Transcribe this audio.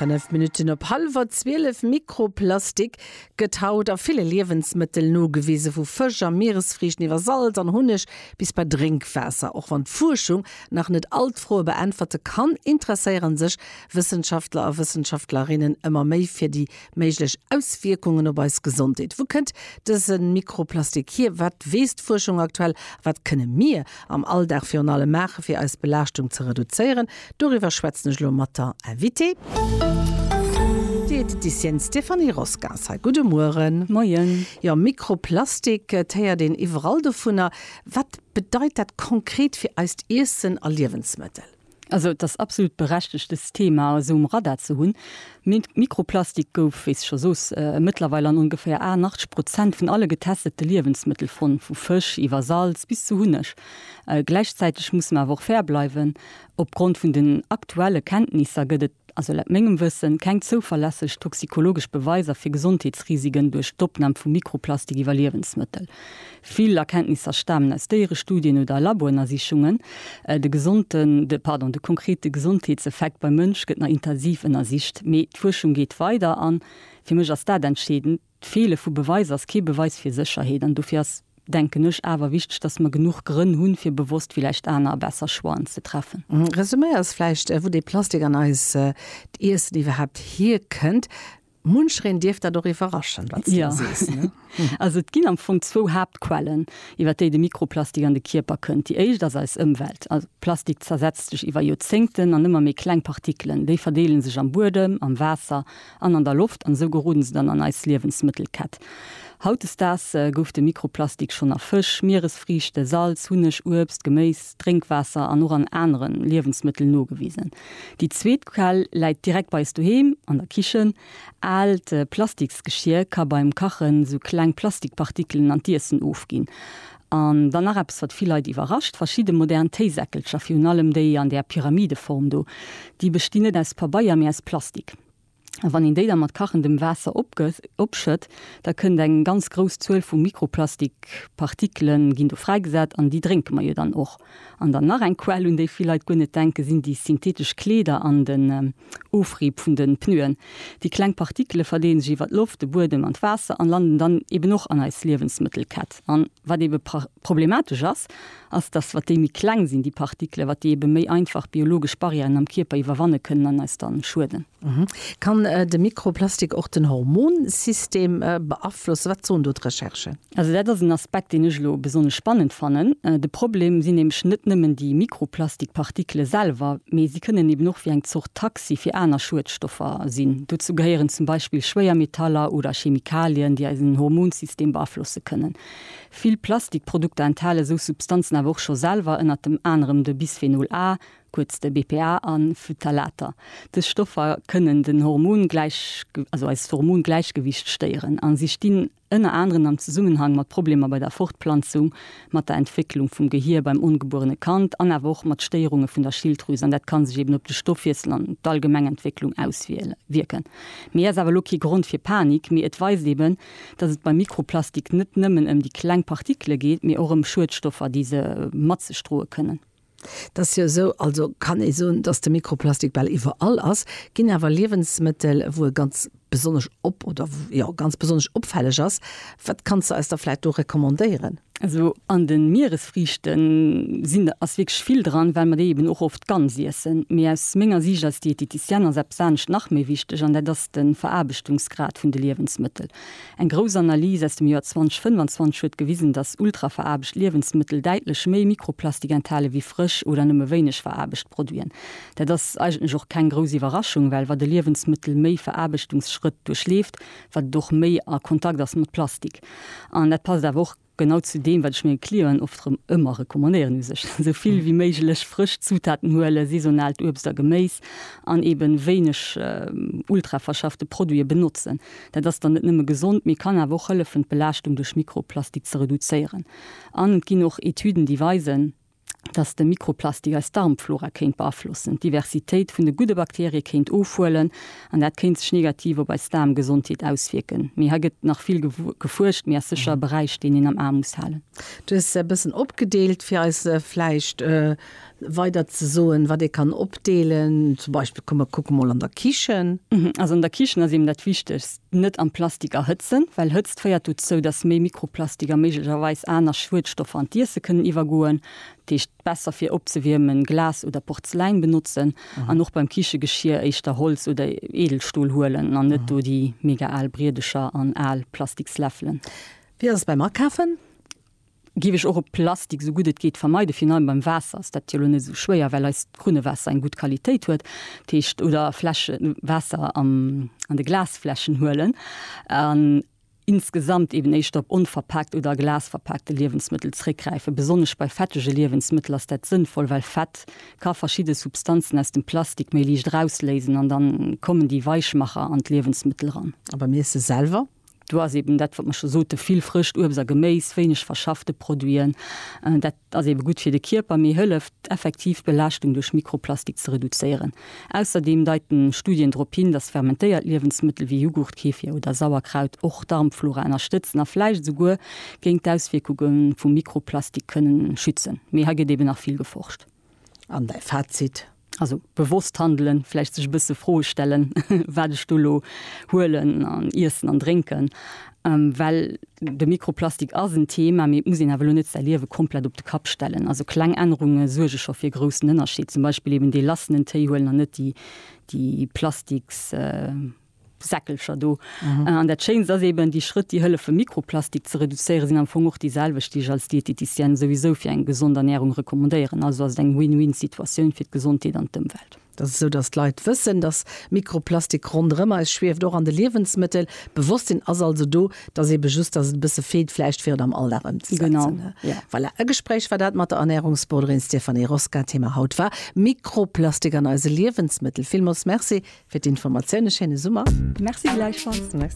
Fënnef Minutten op hallwer zwielef, Mikroplastik gëtt haut a ville Liewensmëttel nogewisen, vu Fësch a Mieresfriichten iwwer Salz an Hunneg bis bei Drénkwaasser. Och wann d'Fuerschung nach net all d'Froe beäntwerte kann, interesséiere sech Wëssenschaftler a Wëssenschaftlerinnen ëmmer méi fir déi Méiglech Auswierkungen op eis Gesondheet, Wou kënnt dëse Mikroplastik hier, wat weess d'Fuerschung aktuell a wat kënne mir am Alldag virun allem maachen, fir eis Belaaschtung ze reduzéieren? Doriwwer schwätzen ech elo mat der Invitée. D'Dietetissienne Stéphanie Roscas hei. Gudde Mueren. Moien. Jo, Mikroplastik, et héiert een iwwerall dovunner. Wat bedeit dat konkret fir eist Iessen a Liewensmëttel? Also et ass absolut berechtigt dëst Thema esou um Radar ze hunn. Mikroplastik gouf, wéi s scho sos, mëttlerweil an ongeféier 88 Prozent vun alle getestete Liewensmëttel fonnt, vu Fësch iwwer Salz bis zu Hunneg. Gläichzäiteg musse mer awer och fair bleiwen, Opgrond vun den aktuelle Kenntnisser gëtt et ass laut mengem Wëssen keng zouverlässeg toxikologesch Beweiser fir Gesondheetsrisiken duerch d'Opnam vu Mikroplastik iwwer Liewensmëttel. Vill Erkenntnisser stamen aus Déierestudien oder Laboënnersichungen. De gesonten, de, pardon, de konkrete Gesondheetseffekt beim Mënsch gëtt nach intensiv ënnersicht, mee d'Fuerschung geet weider an fir mech ass dat entscheedend, D'Feele vu Beweis ass kee Beweis fir Sécherheet an dofir ass, denken ech, awer wichteg, dass mer genuch Grënn hunn, fir bewosst villäicht aner a besser Choixen ze treffen. Resumé ass vläicht, wou dee Plastik an eist d'Iessen iwwerhaapt hierkënnt. Munchereen dierf dat och iwwerraschen, wat s du do sees. Also et ginn am Fong zwou Haaptquellen, iwwer déi de Mikroplastik an de Kierper kënnt. Déi éischt ass eis Ëmwelt. Plastik zersetzt sech iwwer Joerzéngten an ëmmer méi kleng Partikelen. Déi verdeele sech am Buedem, am Waasser an an der Loft an esou geroden se dann an eis Liewensmëttelkett. Hautdesdaags gouf de Mikroplastik schonn a Fësch, Mieresfriichte, Salz, Hunneg, Uebst, Geméis, Drénkwaasser an och an anere Liewensmëttel nogewisen. Déi zweet Quell läit direkt bei eis doheem an der Kichen. Aalt Plastiksgeschier ka beim Kachen esou kleng Plastikpartikelen an d'Iessen ofginn. An dann nach eppes, wat vill Leit iwwerrascht, Verschidde modern Téisäckelcher, virun allem déi an där Pyramideform do, déi bestinn net aus Pabeier, mee aus Plastik. A wann een déi da mat kachendem Waasser opschëtt, da kënnt eng ganz grouss Zuel vu Mikroplastikpartikele ginn do fräigesat, an déi drénke mer jo dann och. An dann nach eng Quell, un déi vill Leit guer net denken, sinn déi synthetesch Kleeder an de. Ofriib vun den Pneuen. Déi kleng Partikele verdeelen sech iwwert d'Loft, de Buedem an d'Waasser an landen dann eben och an eis Liewensmëttelkett. An wat eben problematesch ass, ass dass wat déi méi kleng sinn, déi Partikele, wat déi eben méi einfach biologesch Barrièren am Kierper iwwerwanne kënnen an eis dann schueden. Kann de Mikroplastik och den Hormonsystem beaflossen? Wat soen do d'Recherchen? Also dat ass en Aspekt, deen ech elo besonnesch spannend fannen. De Problem sinn nämlech net nëmmen déi Mikroplastikpartikele selwer, mee si kënnen eben och wéi eng Zort Taxi fir aner Schuedstoffer sinn. Dozou gehéieren zum Beispill Schwéiermetaller oder Chemikalien, déi eisen Hormonsystem beaflosse kënnen. Vill Plastikprodukter enthale sou Substanzen awer och scho selwer, ënnertem anerem de Bisphenol A, kuerz de BPA, a Phtalater. Dës Stoffer kënnen den Hormon-, also eist Hormongläichgewiicht stéieren a si stinn ënner aneren am Zesummenhang mat Problemer bei der Fortplanzung, mat der Entwécklung vum Gehier beim ongebuerene Kand an awer och mat Stéierunge vun der Schilddrüs an dat ka sech eben op de Stoffwiessel an d'allgemeng Entwécklung auswierken. Mee ass awer elo kee Grond fir Panik, mee et weist eben, datt et beim Mikroplastik net nëmmen ëm déi kleng Partikele geet, mee och ëm Schuedstoffer, déi se mat sech droe kënnen. Et ass jo esou, also kann ee soen, datt de Mikroplastik bal iwwerall ass. Ginn awer Liewensmëttel, wou e ganz besonnesch op oder jo ganz besonnesch opfälleg ass? Wat kanns de eis da vläicht do recommandéieren? Also an de Mieresfriichten sinn, ass wierklech vill dran, well mer déi eben och oft ganz iessen. Mee aus menger Siicht als Diététicienne ass eppes anescht nach méi wichteg an dat ass de Veraarbechtungsgrad vun de Liewensmëttel. Eng grouss Analys aus dem Joer 2025 huet gewisen, datt ultraveraarbecht Liewensmëttel däitlech méi Mikroplastik enthale wéi frësch oder nëmme wéineg veraarbecht Produiten. Dat ass eigentlech och keng grouss Iwwerraschung, well wat e Liewensmëttel méi Veraarbechtungsschrëtt duerchleeft, wat et och méi a Kontakt ass mat Plastik. An dat passt awer och. Genau zu deem, wat ech menge Clienten oft erëm ëmmer recommandéieren, u sech esou vill wéi méiglech frësch Zutaten huelen, saisonaalt Uebst a Geméis an eben wéineg ultraverschaffte Produite benotzen. Dat ass dann net nëmme gesond, mee kann awer och hëllefen, d'Belaaschtung duerch Mikroplastik ze reduzéieren. An et ginn och Etüden, déi weisen, dass de Mikroplastik eis Darmflora kéint beaflossen, d'Diversitéit vun de gudde Bakterie kéint ofhuelen an dat kéint sech negativ op eis Daarmgesondheet auswierken. Mee hei gëtt nach vill gefuerscht, mee ass sécher e Beräich, deen een am A muss halen. Du hues se e bëssen opgedeelt, fir eis vläicht weider ze soen, wat ee kann opdeelen. Zum Beispill, komm, mer kucke mol an der Kichen. Also an der Kichen ass eben dat Wichtegst, Net am Plastik erhëtzen, well Hëtzt féiert dozou, dass méi Mikroplastik a méiglecherweis aner Schuedstoffer an d'Iesse kënnen iwwergoen. Dat heescht, besser fir opzewiermen Glas oder Porzeläin benotzen an och beim Kichegeschier éischter Holz oder Edelstol huelen an net do déi mega al Briedercher an al Plastiksläffelen. Wéi ass et beim Akafen? Géif ech och op Plastik esou gutt et geet vermeiden. Virun allem beim Waasser ass dat jo elo net esou schwéier, well eist Krunnewaasser eng gutt Qualitéit huet. Dat heescht, oder Fläsche, Waasser an de Glasfläschen huelen an insgesamt eben éischter op onverpaakt oder a Glas verpaakte Liewensmëttel zréckgräifen. Besonnesch bei fettege Liewensmëttel ass dat sënnvoll, well Fett ka verschidde Substanzen aus dem Plastik méi liicht erausléisen an da kommen déi Weichmacher an d'Liewensmëttel eran. A beim Iesse selwer? Do ass eben dat, wat mer scho soten, vill frëscht Uebst a Geméis, wéineg verschaffte Produiten. Dat ass ebe gutt fir de Kierper, mee hëlleft, d'effektiv Belaaschtung duerch Mikroplastik ze reduzéieren. Ausserdeem deiten Studien drop hin, dass fermentéiert Liewensmëttel wéi Jughurt, Kefir oder Sauerkraut och d'Darmflora ënnerstëtzen a vläicht esouguer géint d'Auswierkunge vu Mikroplastik kënnen schützen. Mee hei gëtt eben nach vill geforscht. An däi Fazit? Also bewosst handelen, vläicht sech e bësse Froe stellen, wat ech do elo huelen an iessen an drénken. Well de Mikroplastik ass en Thema, mee et muss een awer elo net säi Liewe komplett op de Kapp stellen. Also kleng Ännerunge suerge scho fir e groussen Ënnerscheed. Zum Beispill eben dee lassenen Téi huelen an net déi Plastiks. Säckelcher do. An dat Schéinst ass eben, déi Schrëtt, déi hëllefen, Mikroplastik ze reduzéieren, sinn am Fong och déi selwecht, déi ech als Dieteticienne souwisou fir eng gesond Ernärung recommandéieren. Also ass et eng Win-Win-Situatioun fir d'Gesondheet an d'Ëmwelt. Et ass esou, datt d'Leit wëssen, datt Mikroplastik ronderëm eis schwieft, och an de Liewensmëttel. D'Bewosstsinn ass also do. Et ass eben just, datt et e bësse feelt vläicht, fir et am Alldag ëmzesetzen. Voilà, e Gespréich war dat mat der Ernärungsboarderin Stéphanie Rosca. Thema haut war Mikroplastik an eise Liewensmëttel. Villmools Merci Fir d'Informatioun e schéine Summer. Merci gläichfalls. Merci.